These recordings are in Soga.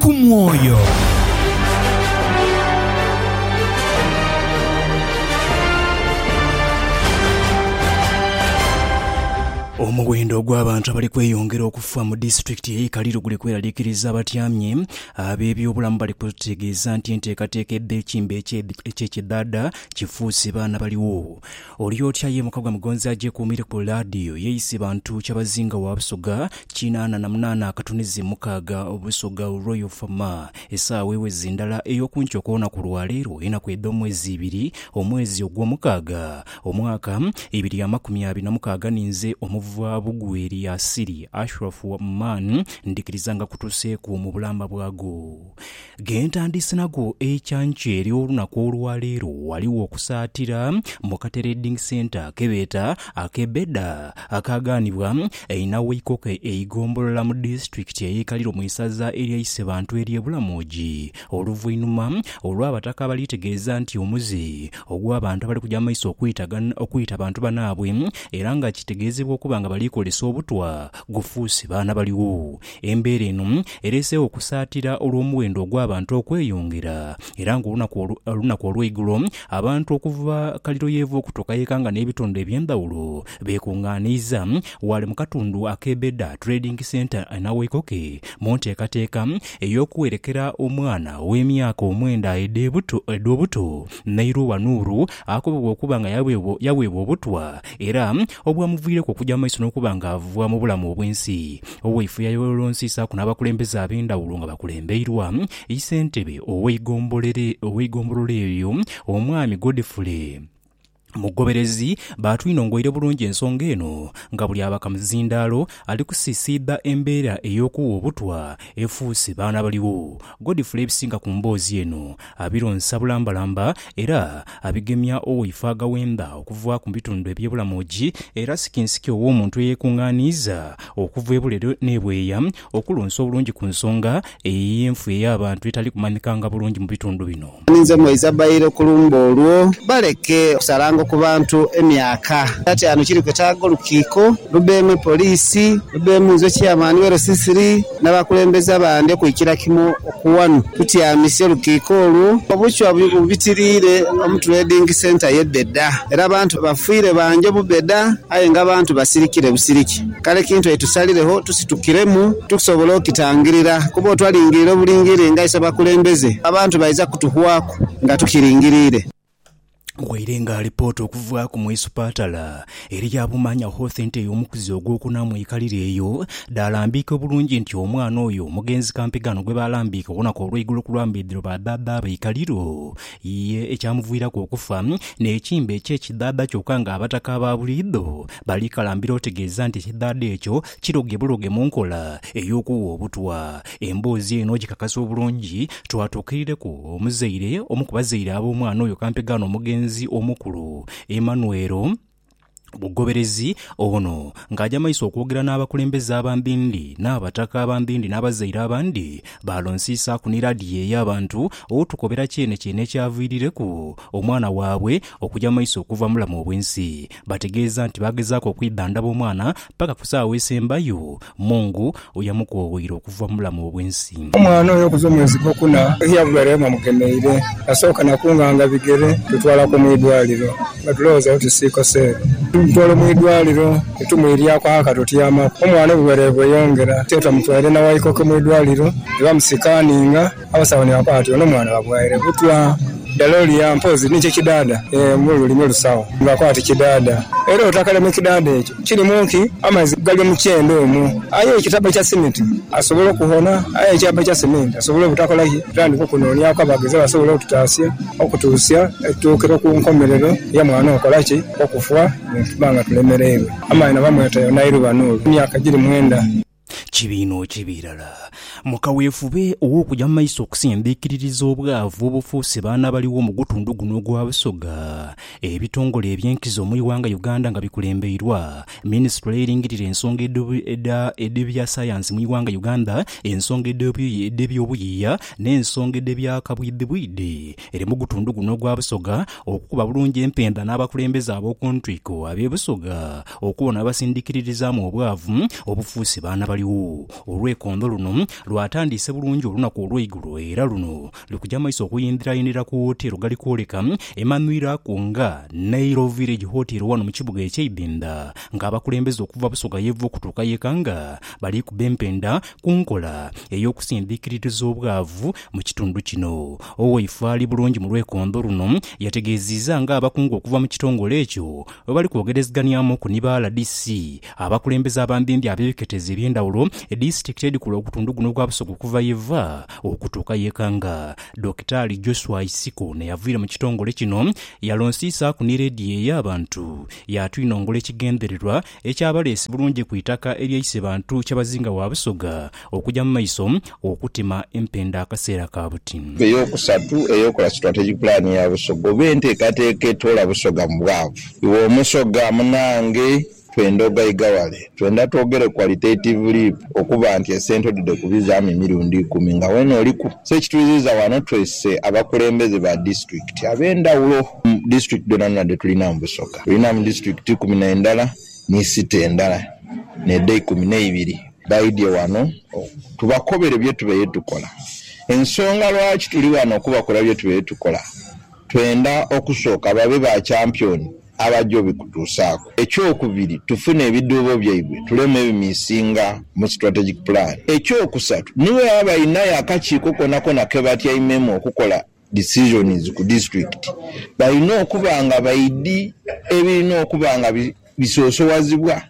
ku mwoyo. Omuwendo ogw'abantu abali kweyongera okufa mu disitulikiti ey'e Kaliro guli kweraliikiriza abatyamye. Ab'ebyobulamu bali kutegeeza nti enteekateeka edha ekimbe eky'ekidhaadha kifuuse baana baligho. Oli otya ye muka gwa Mugonzi agyekuumire ku laadiyo yeeyise bantu kyabazinga wa Busoga kinaana na munaana akatunizi mukaaga Busoga Royal Fama. Esaawa eweze ndala ey'okunkya okw'olunaku lwa leero enaku edh'omwezi ibiri omwezi ogw'omukaaga omwaka ibiri amakumi abiri na mukaaga ninze omuva bugwe Eliasili Ashraf Oman ndhikirizanga kutuseeku mu bulamba bwago. Ghe ntandise nagho ekyanke ery'olunaku olwa leero ghaligho okusaatira mu kateredingi senta ke beeta ak'e Beda akaagaanibwa einha w'eikoko eigombolola mu disitulikiti ey'e Kaliro mu isaza erya Isebantu ery'e Bulamoji oluvainhuma olw'abataka abaliitegeeza nti omuze ogw'abantu abali kuja mu maiso okwita bantu banaabwe era nga kitegeezebwa okuba nga bali kozesa obutwa gufuuse baana baligho Embeera eno ereeseegho okusaatira olw'omuwendo ogw'abantu okweyongera, era ng'olunaku olunaku olw'eigulo abantu okuva Kaliro y'eva okutuuka y'ekanga n'ebitundu eby'endhawulo beekungaaniiza ghale mu katundu ak'e Beda Trading Centre e Nawaikoke mu nteekateeka ey'okuwerekera omwana ow'emyaka omwenda edh'ebuto edh'obuto Nairuwa Nuru akobebwa okuba nga yaweebwa yaweebwa obutwa era obwamuviireku okugya mu maiso n'okuba ng'ava mu bulamu obw'ensi Owaifo yayolonsiisaaku n'abakulembeze ab'endhawulo nga bakulembeirwa yi ssentebe ow'eigombolola eryo, Omwami Godfrey Mugoberezi. Baatwinongoire bulungi ensonga eno nga buli abakamuzindaalo ali kusiisiidha embeera ey'okuwa obutwa efuuse baana baligho. Godfrey ebisinga ku mboozi eno abironsa bulambalamba era abigemya owoife agaghenda okuva ku bitundu eby'ebulamoji era sikinsiki ow'omuntu eyekungaaniiza okuva ebulero n'ebweeya okulonsa obulungi ku nsonga eyo ey'enfwa ey'abantu etali kumanhikanga bulungi mu bitundu bino. Ninze mwaiza baile ku lumbe olwo. Baleke okusalanga ku bantu emyaka. Kyataanu kiri kwetaaga olukiiko lubeemu poliisi, lubeemu nze Chairman we LCCR n'abakulembeze abandi okwikira kimu ku wano tutyamise olukiiko olwo. Obuchwa bubitiriire mu Trading Centre ye Beda era abantu bafiire bangi mu Beda aye nga abantu basirikire busiriki. Kale kintu aye tusaliregho tusitukiremu tusobole okitangirira kuba otwalingirira obulingirire nga ise bakulembeze, abantu baidha kutuhwaku nga tukilingirire. Waire nga alipoota okuvaaku mu isupatala eri Abumanya Hoath nti ey'omukuzi ogwokuna mu ikalire eyo dhaalambiika obulungi nti omwana oyo mugenzi kampigano gwebaalambiika olunaku olweigulo ku lwa mbidhiro ba dhaadha be ikaliro ye ekyamuviiraku okufa n'ekimbe kye kidhaadha kyokka nga abataka ababuliidho Balikalambira otegeeza nti ekidhaadha ekyo kiroge buroge mu nkola ey'okugha obutwa. Emboozi eno ogikakasa obulungi, twatuukirireku omuzaire omu ku bazaire ab'omwana oyo kampegaano omugenzi omukulu, Emmanuel Bugoberezi. Ono ng'aja maiso okwogera n'abakulembeze aba Mbindi n'abataka aba Mbindi n'abazaire abandi, baalonsiisaaku ni laadiyo ey'abantu otukobera kyene kyene ekyaviirireku omwana waabwe okuja maiso okuva mulamu obw'ensi. Baategeeza nti baagezaaku okwidhandhaba omwana paka ku saagho esembayo, Mungu yamukooghoira okuva mu bulamu obw'ensi. Omwana oyo okuva omwezi gwokuna yagwera ye bamugemeire, nasooka na kunganga bigere kutwalaku mu idwaaliro nga tulowooza oti siikoseero. Tumutwala mu idwaaliro ni tumwiryaku aka tutyamaku, omwana obulwaire bweyongera. Kyeetu bamutwaire na Waikoke mu idwaaliro ni bamusikaaninga. Abasawo ni bakoba bati, Ono mwana bamughaire butwa? Dala olia mpozi ni kye kidaada? Ee, mu lulimi olusawo ni bakoba bati, Kidaada. Era otakale mu kidaada ekyo kirimu ki? Amaizi gali mu kyenda omwo. Aye ekitaba ekya simiti asobola okuhona, aye ekyaba ekya seminti asobola obutakola ki? Tutandike okunooniaku abaagezi abasobola okututaasia okutuusia tutuukire ku nkomerero ya mwana okola ki? Okufa, ni tuba nga tulemereirwe. Amaino bamweta Yonairu Banuuru, emyaka giri mwenda. Kibi inho, kibi irala. Mu kaweefube ow'okuja mu maiso okusembeekerereza obwavu obufuuse baana abaligho mu gutundhu guno ogwa Busoga, ebitongole eby'enkizo mu ighanga Uganda nga bikulembeirwa minisitule eringirira ensonga edh'ebyasayansi mu ighanga Uganda, ensonga edh'ebyobuyiiya n'ensonga edh'ebyakabwidhibwidhi eri mu gutundhu guno ogwa Busoga okukuba bulungi empenda n'abakulembeze ab'oku ntwiko ab'e Busoga Okwo onabasindikiririzaamu obwavu obufuuse baana baligho. Olwekondo luno lwatandiise bulungi olunaku olweigulo era luno lukuja maiso okuyindhirayindhira ku woteero gali kwoleka emanhwira ku nga Nairo Village Hotel wano mu kibuga ekye Ibinda nga abakulembeze okuva Busoga yeva okutuuka yeka nga balikuba empenda ku nkola eyokusindhikiririza obwavu mu kitundu kino. Owaife ali bulungi mu lwekondo luno yategeziiza nga abakungu okuva mu kitongole ekyo Bwe bali kwogerezganyamuku ni ba rdc, abakulembeze abambimbi ab'ebiketezo eby'endhawulo, disitulikiti edhikola ogutundu guno ogwa Busoga okuva ye va okutuuka ye Kanga, Dokitaali Joshua Isiko n'eyavaire mu kitongole kino yalonsiisaaku ni leediyo ey'abantu yaatwinongola ekigendererwa ekyabaleese bulungi ku itaka erya Isebantu Kyabazinga wa Busoga Okuja mu maiso okutema empenda akaseera ka buti. Ey'okusatu, ey'okukola sitrategi pulaani ya Busoga oba enteekateeka etoola Busoga mu bwavu. Iwe Omusoga munaange, twenda ogaiga wale. Twenda twogere qualitative leap okuba nti esente odhide ku bizaamu emirundi ikumi nga weena oliku. So ekituiziiza wano twese abakulembeze ba disitulikiti ab'endhawulo mu disitulikiti dhoonadhoona dhe tulina mu Busoga. Tulinamu disitulikiti ikumi na ndala. ni site endala n'edheikumi n'eibiri baidhie ghano tubakobere bye tubaire tukola. Ensonga lwaki tuli ghano okubakola bye tubaire tukola, twenda okusooka babe ba kyampyoni abaja obikutuusaaku. Ekyokubiri, tufune ebidhuubo byaibwe tuleme ebimiisinga mu Strategic Plan. Ekyokusatu, ni bwebaba bainayo akakiiko konakona ke batyaimemu okukola. decisions ku disitulikiti balina okuba nga baidhi ebirina okuba nga bisosowazibwa.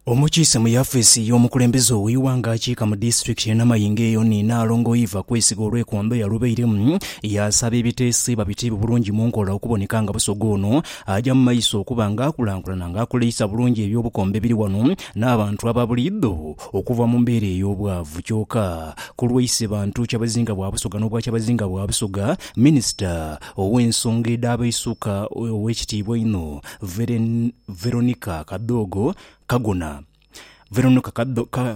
Omukiise mu yafiisi y'omukulembeze ow'eighanga akiika mu disitulikiti ye Namayingo eyo ni Nnaalongo Eva Kwesiga olwekwamba eyalubairemu yaasaba ebiteeso ebiba biteebwe bulungi mu nkola okuboneka nga Busoga ono aja mu maiso okuba nga akulankulana nga akoleisa bulungi eby'obukombe ebiri wano n'abantu aba buliidho Okuva mu mbeera ey'obwavu kyoka, ku lwa Isebantu Kyabazinga bwa Busoga n'obwa Kyabazinga bwa Busoga, Minisita ow'ensonga edh'abaisuka Ow'ekitiibwa einho Veronica Kadhogo Kagona Veronica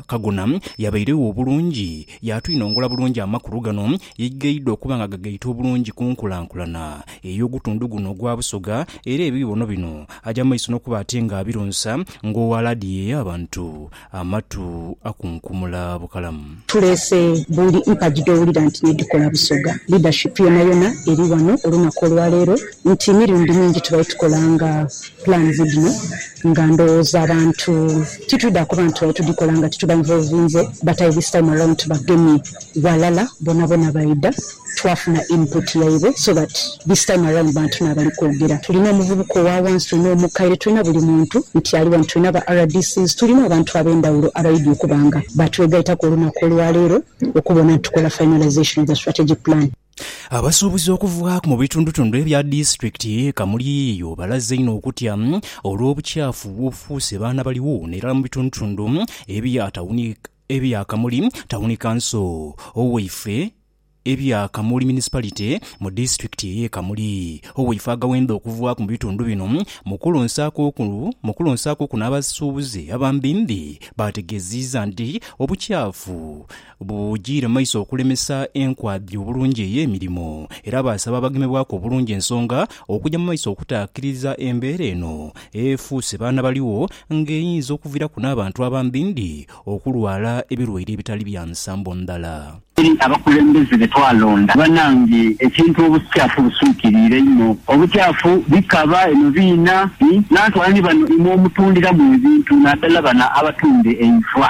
Kagona yabairegho obulungi, yaatwinongola bulungi amakulu gano yaigaidwa okuba nga gagaita obulungi ku nkulankulana ey'ogutundu guno ogwa Busoga era ebiibono bino aja maiso n'okuba ate nga abironsa ng'owa laadiyo ey'abantu amatu akunkumula bukalamu. Tuleese buli mpagi dh'owulira nti n'edhikola Busoga. Leadership yonayona eri ghano olunaku olwaleero nti emirundi mingi tubadde tukolanga plans dhino nga ndhowooza abantu titwidha kuba nti tubadde tudhikola nga tituba involvinze but aye this time around tubagemye. ghalala bonabona baidha twafuna input yaibwe so that this time around bantu nabali kwogera tulina omuvubuka owawansi tulina omukaire tulina buli muntu nti ali wano tulina ba RDC's tulina abantu abendhawulo abaidhi okuba nga batwegaitaku olunaku olwaleero okubona nti tukola finalisation of the strategic plan. Abasuubuzi okuvaaku mu bitundutundu ebya disitulikiti ye Kamuli eyo balaze inho okutya olw'obukyafu obufuuse baana baligho n'erala mu bitundutundu ebya tawuni. Ebya Kamuli Tawuni Kanso Owaife Ebya Kamuli Municipality mu Disitulikiti eye Kamuli Owaife Agawenda Okuvaaku mu bitundu bino mu kulonsaaku kuno abasuubuzi abambimbi baategeziiza nti obukyafu bujiire maiso okulemesa enkwabya obulungi eye mirimo era baasaba abagemebwaku obulungi ensonga okuja mu maiso okutaakiriza embeera eno Efuuse baana baligho nga eyinza okuviraku n'abantu abambi ndi okulwala ebirwaire ebitali bya nsambo ndhala. Eri abakulembeze be twalonda, banange ekintu obuskyafu buswikiriire inho. Obukyafu bikaba eno biina i, n'antu ani bano imwe omutundiramu ebintu, naddala bano abatunda eivwa?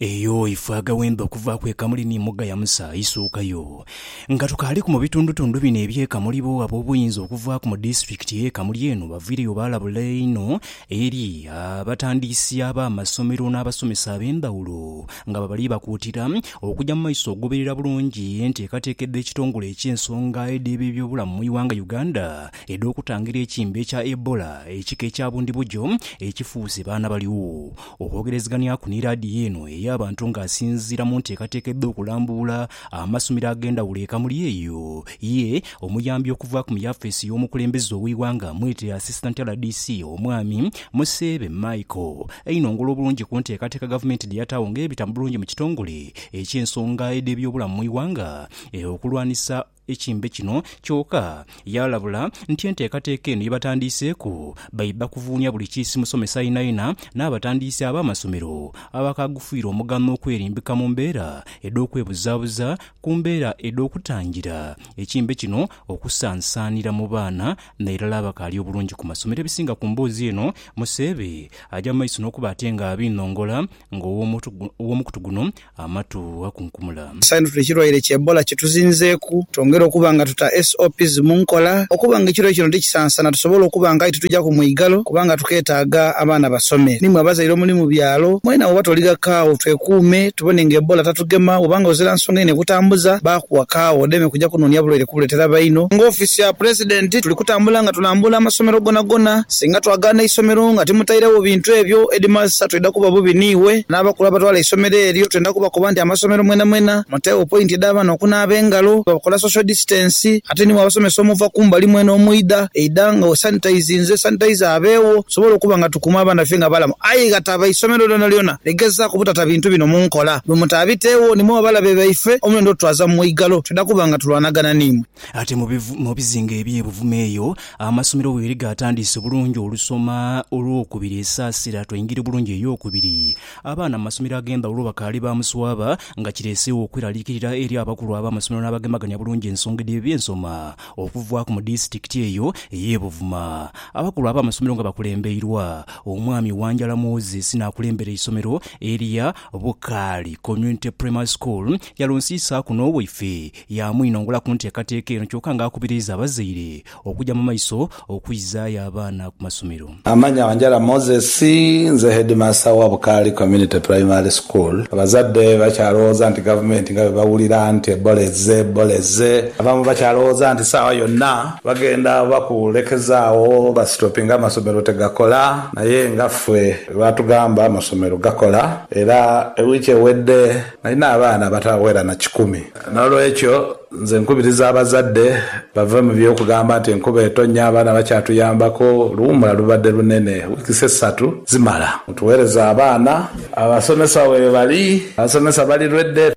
Eyo ife agawembe okuvaaku e Kamuli ni Muga ya Musa aisuukayo. Nga tukaaliku mu bitundutundu bino eby'e Kamuli bo ab'obuyinza okuvaaku mu disitulikiti y'e Kamuli eno baviireyo baalabula inho eri abatandiisi ab'amasomero n'abasomesa ab'endhawulo nga bwe bali bakuutira okuja mu maiso okugoberera bulungi enteekateeka edh'ekitongole eky'ensonga edh'ebebyobulamu mu ighanga Uganda edh'okutangira ekimbe kya Ebola ekika ekya bundibugyo ekifuuse baana baliwo Okwogerezeghanyaku ni laadiyo eno ey'abantu nga asinziira mu nteekateeka edh'okulambuula amasomero ag'endhawulo e Kamuli eyo ye omuyambi okuvaaku mu yafeesi y'omukulembeze ow'eighanga mwete Assistant rdc Omwami Museebe Michael einhongole obulungi ku nteekateeka gavumenti dheyataagho ng'ebita bulungi mu kitongole eky'ensonga edh'ebyobulamu mu ighanga okulwanisa ekimbe kino kyoka, yaalabula nti enteekateeka eno yebatandiiseeku baidha kuvuunia buli kiisi musomesa ainaina n'abatandiisi ab'amasomero abakaagufiirwa omuganho okwerimbika mu mbeera edh'okwebuzaabuza ku mbeera edh'okutangira ekimbe kino okusaansaanira mu baana nairala abakaali obulungi ku masomero. Ebisinga ku mboozi eno, Museebe aja mu maiso n'okuba ate nga abiinhongola nga ow'omukutu guno Amatu akunkumula. Saintute ekirwaire kya Ebola kituzinzeeku, twongere okuba nga tuta SOPs mu nkola okuba nga ekirwaire kino tikisansana tusobole okuba nga aye titujaku mwigalo kubanga tuketaaga abaana basome. Nimwe abazaire omuli mu byalo mwena woba toliga kaawo twekuume tubone nga Ebola tatugema woba nga ozira nsonga inho ekutambuza baakuwa kaawo odeme kuja kunoonia bulwaire kubuletera baino. Nga ofiisi ya Pulezidenti tuli kutambula nga tulambuula amasomero gonagona, Singa twagaana eisomero nga timutairegho bintu ebyo, Headmaster twidha kuba bubi n'iwe. N'abakulu abatwala eisomero eryo twendha kubakoba nti amasomero mwenamwena muteegho pointi edh'abaana okunaaba engalo, bakola social distance ate ni bw'abasomesa omuva ku mbali mwena omwidha, eidha nga wesanitizinze, sanitizer abeegho tusobole okuba nga tukuuma abaana baife nga balamu. Aye ghataba isomero lyonalyona ligezaaku butata bintu bino mu nkola. Bwe mutaabiteegho nimwo abalabe baife omulendo otutwaza mu mwigalo. Twidha kuba nga tulwanagana n'imwe. Ate mu bizinga eby'e Buvuma eyo amasomero weeri gaatandiise bulungi olusoma olwokubiri esaasira twaingira bulungi eyokubiri. Abaana mu masomero ag'endhawulo bakaali ba muswaba nga kireeseegho okweraliikirira eri abakulu ab'amasomero n'abagemagania bulungi ensonga edh'ebyo bye nsoma okuvaaku mu disitulikiti eyo ey'e Buvuma. Abakulu ab'amasomero nga bakulembeirwa Omwami Wanjala Moses n'akulembera eisomero erya Bukaali Community Primary School yalonsiisaaku n'owaife Yaamwinongula ku nteekateeka eno kyoka nga akubiriiza abazaire okuja mu maiso okwizaayo abaana ku masomero. Amannya Wanjala Moses, nze Heedimansa wa Bukaali Community Primary School. Abazadde bakyalowooza nti Gavumenti nga bwe bawulira nti Ebola ezze, Ebola ezze, abamu bakyalowooza nti saawa yonna bagenda oba kulekezaawo basitopinge amasomero tegakola naye nga ffe bwe baatugamba amasomero gakola era wiiki ewedde, Nalina abaana abataghera na kikumi. N'olwekyo nze nkubiriza abazadde bave mu by'okugamba nti enkuba etonya, abaana bakyatuyambaku. Oluwummula lubadde lunene, wiikisi essatu zimala. Mutuweereze abaana. Abasomesa weebali? Abasomesa bali lwedde.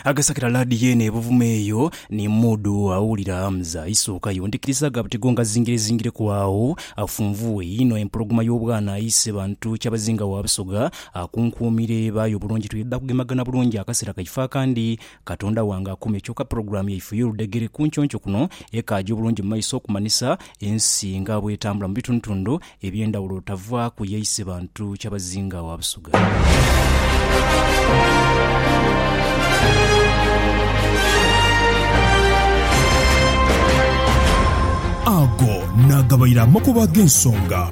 Agasakira laadiyo eno e Buvuma eyo ni muudu awulira Hamza. Isookayo ndhikiriza aga buti go ngazingirezingireku agho. Afunvuwe inho empologoma y'obwana aise bantu Kyabazinga wa Busoga Akunkuumire eba aye obulungi twidha kugemagana bulungi akasera kaife akandi. Katonda wange akuume kyoka pulogulaamu yaife ey'oludhegere ku nconco kuno ekaaja obulungi mu maiso okumanhisa ensi nga bw'etambula mu bitundutundu eby'endhawulo otavaaku ye Isebantu Kyabazinga wa Busuga. Ago nagabaire amakubo ag'ensonga.